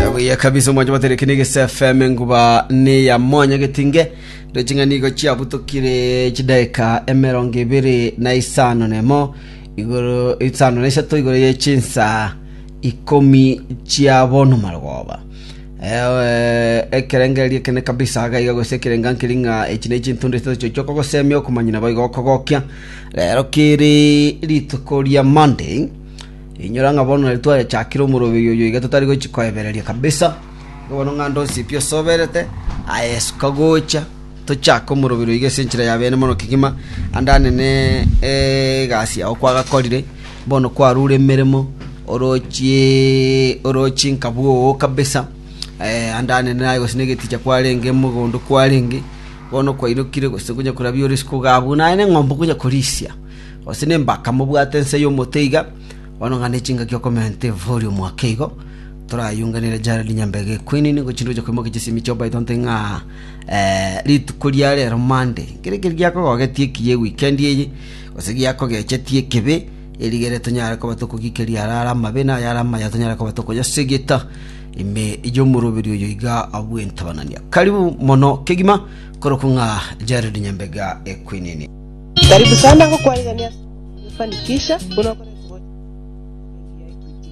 yabuya kabisa omwancho baterekene egese fm enguba ne ya mwanya getinge ndeching'ani igo chiabutokire chidaika emerongo ibere na isano nemo igoro isano na isato igoro ye chinsa ikomi chia bono marogoba ewe ekerengererio kene kabisa agaiga gose ekerenga nkiri ng'a echi ne chintundu isatu chochio okogosemia okomanyina boigo okogokia rero kiri rituko ria monday Rinyora ng'a bono nari twayechakire omoroberio oyo iga totari gochia koebereria kabisa. Igo bono ng'a onde onsi pi osoberete, aye suka gocha, tochake omoroberio iga ase enchera ya beene mono kegima, ande anene egasi yao kwagakorire, bono kwarure emeremo, orochie orochie nka bwoo kabisa, ande anene aye gose na egeticha kwarenge, mogondo kwarenge, bono kwairokire gose konya korabia ore isiko iga abwo, naende eng'ombe okonya korisia. gose nembaka mobwate ense y'omoteiga, bono ng'a nechingaki okomenta evori omwaka igo, torayunganere Jared Nyambege Equinini gochindwa gocha koimokia chisemi chio Brighton Thing ng'a eh, rituko ria rero Monday nkere keri giakogogetie ekiya ewikendi eye gose giakogechetie ekebe erigere tonyare koba tokogikeria ara ara amabe na ayare amaya tonyare koba tokoyasegeta ime y'omoroberi oyo iga bw'entabanania karibu mono kegima korokwa ng'a Jared Nyambega Equinini Karibu sana gokwanigania ase Fanikisha buna okoretwa gocha Equity.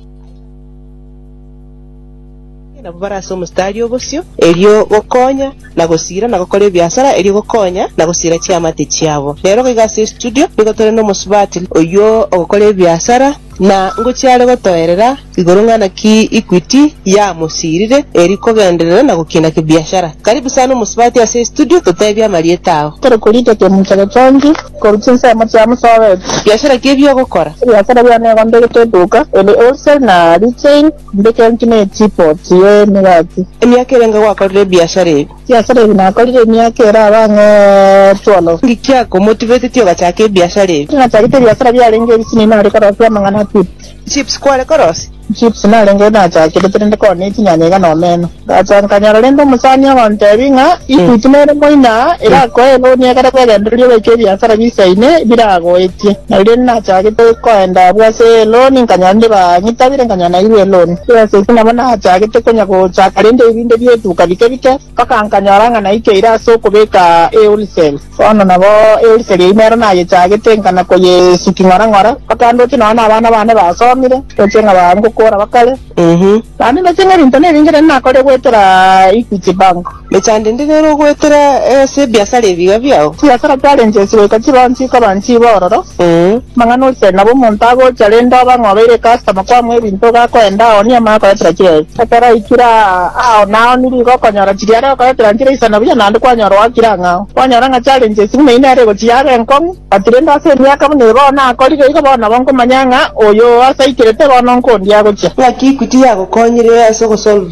Nabo bare ase omostari obosio erio gokonya na gosira na gokora ebiasara erio gokonya na gosira chiamate chiabo. Rero iga ase estudio nigo tore nomosubati oyio ogokora ebiasara na ngochia are gotoerera Igoro ng'a naki Equity yamosiirire eri kogenderera na gokina kibiashara. Karibu sana omosubati ase estudio totebie amarieta ao. Tore korita kemincha getongi korwa chinsemo chia mosobeti. Biashara ki ebi ogokora? Ebiasara biane igo mbegete eduka eri wholesale na retail, mbekenki ne teapot ye emegati. Emiaka ere inga gwakorire ebiashara ebi? Ebiasara ebi nakorire emiaka ere aba ang'e twelve. Nki kiakomotivetetie ogachaka ebiashara ebi? Eri nachagete ebiasara biarenge ebisini nare korosio amang'ana pi. Chips kware korosia. Chips narenge nachakerete rende kore ne chinyanya iga na omeno. Ngacha nkanyora rende omosani ogontebia ng'a ikuiti nere moina aa erakoe eloan egere kwegendereria obeke ebiasara bisaine biragoetie. Na riria nachagete koenda abwo ase eloan nkanyora rende banyitabire nkanyora nairwe eloan. Ase eki nabo nachagete konya gochaka rende ebinto bietuka bike bike. Mpaka nkanyora ng'a naikeire ase okobeka euriseri. Bono nabo euriseri eyio nero nayechaagete, nkana koyesuki ng'ora ng'ora, mpaka ndoche nonya nabana bane basomire, ndoche ng'a baa ngokora bakare. Naende ndoche ng'a ebinto nebinge rende nakorire goetera Equity Bank. Mecha ndende nere ogoetera ase ebiasara ebiga biao. Chibiasara chiarenge echio goika chiroonsi chikoba nchibororo. Amang'ana oise nabo omonto agocha rende obe ng'a obeire ekastoma kwamua ebinto iga akoenda ao nigo amanye okoyetera chiria ere. Ekero aikire ao nao nigo okonyora chiria are okoyetera nchire isana buya naende kwanyora oakire ang'e ao. Kwanyora ng'a challenge esibwe na inee ere egochi yabe enkong'u. But rende ase emiaka buna eye bono akorire igo bono nabo nkomanya ng'a oyo oo ase aikire te bono nko onde agochia. Ng'aki Equity yagokonyire ase ogosolve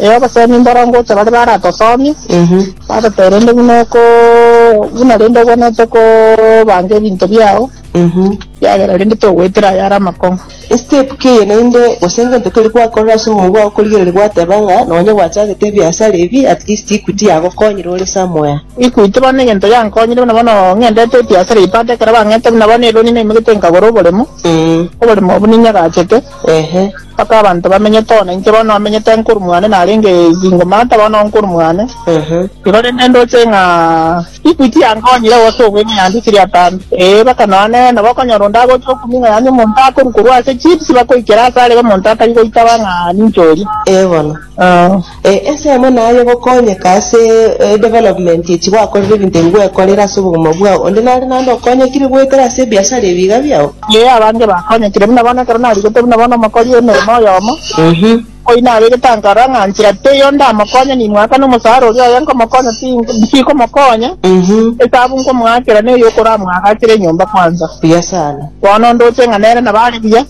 Ee, obosemi mboronge ocha baria baratosomie, batotebe rende buna oko buna rende obwenerete kobanga ebinto biao, ekiagera rende togoetera ayare amakong'u. Estep keye naende gose ngento keria gwakorire ase omoyo bwao korigereria gwateba ng'a nonye gwachagete ebiasara ebi at least Equity yagokonyire ore somewhere. Equity bono egento yankonyire buna bono ng'endete ebiasara ebi but ekero bang'ete buna bono eloni naimoketie nkagora oboremo, oboremo obwo ninyagachete. Ehe, mpaka abanto bamenyete oo nainche bono amenyete nguru mwane narenge ezingo mata bono nguru mwane. Ehe, igo rende ndoche ng'a chikwi chiankonyire gose obweng'u yande chiri atambe. Ee, mpaka nonya nere nabo okonyora onde agocha okuming'a yaani omonto akoru korwa ase chips bakoikera asare iga omonto atari goitaba ng'a ninche oria. Ee bono. Ee. Ee, ensemo naye gokonyeka ase edevelopment echi gwakorire ebinto ebi gwekorire ase obogima bwao. Onde nare naende okonyekire goetera ase ebiasara ebi iga biao? Ee, abange bakonyekire buna bono ekero narigete buna bono omokori emeremo oyomo, oyio naregete ankarora ng'a nchera teiyo ndamokonye nimwakane omosara oria oye nkomokonya ti tikomokonya, esabu nkomoakera neye okoramwagachere enyomba kwanza. Buya sana. Bono ndoche ng'a nere nabo are buya.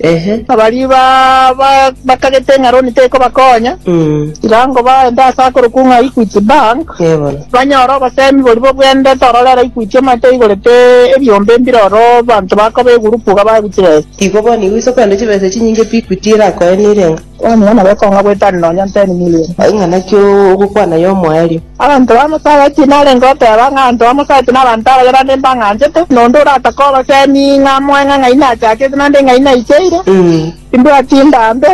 Ehe. Baria bakagete ng'a roni tekobakonya, chirango baende ase akorokwo ng'a Equity Bank, banyore obosemi boria bobwenerete ororere Equity amo teigorete ebiombe mbire oro abanto bakoba egurupu iga baguchire ase. Igo bono igo ise okogenda chibesa echinyinge pi Equity erakoe nere ng'a. Kwanyora na gokong'a goetani nonya nteni milion. Aye ng'a naki ogokwana y'omoerio? Abanto bamosabetie narenge goteba ng'a abanto bamosabetie nabanto abayerande mbang'anchete, na onde oratake obosemi ng'a amoe ng'a ng'ai nachakete naende ng'ai naicheire, timbwati ndambe.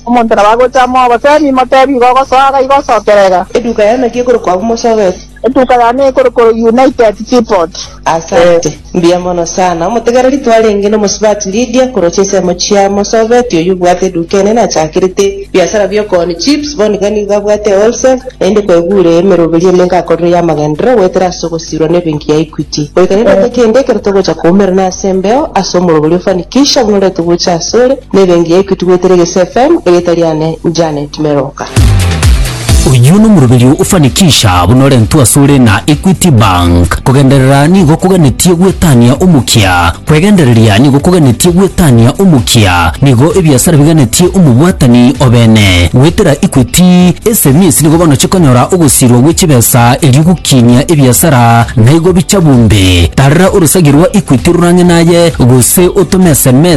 Omonto nabo agocha amoe obosemi, motebi igo ogosoa, iga igo osokerega. Eduka yane ki ekorokwa abomosabetie? Etuka yane ekore koro United Seaport. Asante. Mbuya mono sana. Omotegereri twarenge nomosubati Lydia koroche ensemo chia Mosoveti oyio obwate eduka enene achakerete biasara biokooni chips bono iga nigo abwate wholesale naende kwegure emeroberi emenke akorire yamagenderero goetera ase ogosirwa nebenki ya Equity goika rirote kende ekero togocha koumera nase embeo ase omorobori ofanikisha buna orete gocha asore Nere engiya eke tugwetera egese FM erieta riane Janet Meroka. Oyio nomoroberio ofanikisha buna orentwe asore na Equity Bank. Kogenderera nigo koganetie gwetania omokia. Kwegendereria nigo koganetie gwetania omokia. Nigo ebiasara biganetie omobwatani obene. Goetera Equity, SMEs nigo bono chikonyora ogosirwa gwe chibesa erio gokinia ebiasara naigo bicha bunde. Tarera orosagi rwa Equity rorang'e naye gose otome SMS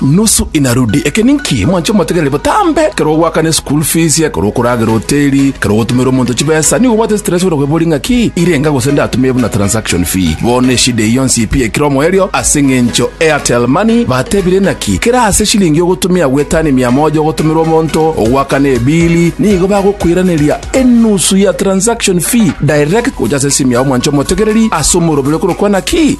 Nusu inarudi. Eke ninki mwanche motegerere botambe? Ekero ogoakana eschool fees, ekero okoragera hoteli, ekero ogotumera omonto chibesa, nigo obwate stress ore okoiboria ng'a ki irenga gose ndatumie buna transaction fee. Bono eshida eye yonsi pi ekire omoerio ase eng'encho Airtel Money batebire naki kera ase eshilingi ogotumia gwetani mia moja ogotumera omonto ogoakana ebili nigo bagokoiraneria enusu ya transaction fee direct gocha ase esimu yao mwanche omotegereri ase omoroberi okorokwa naki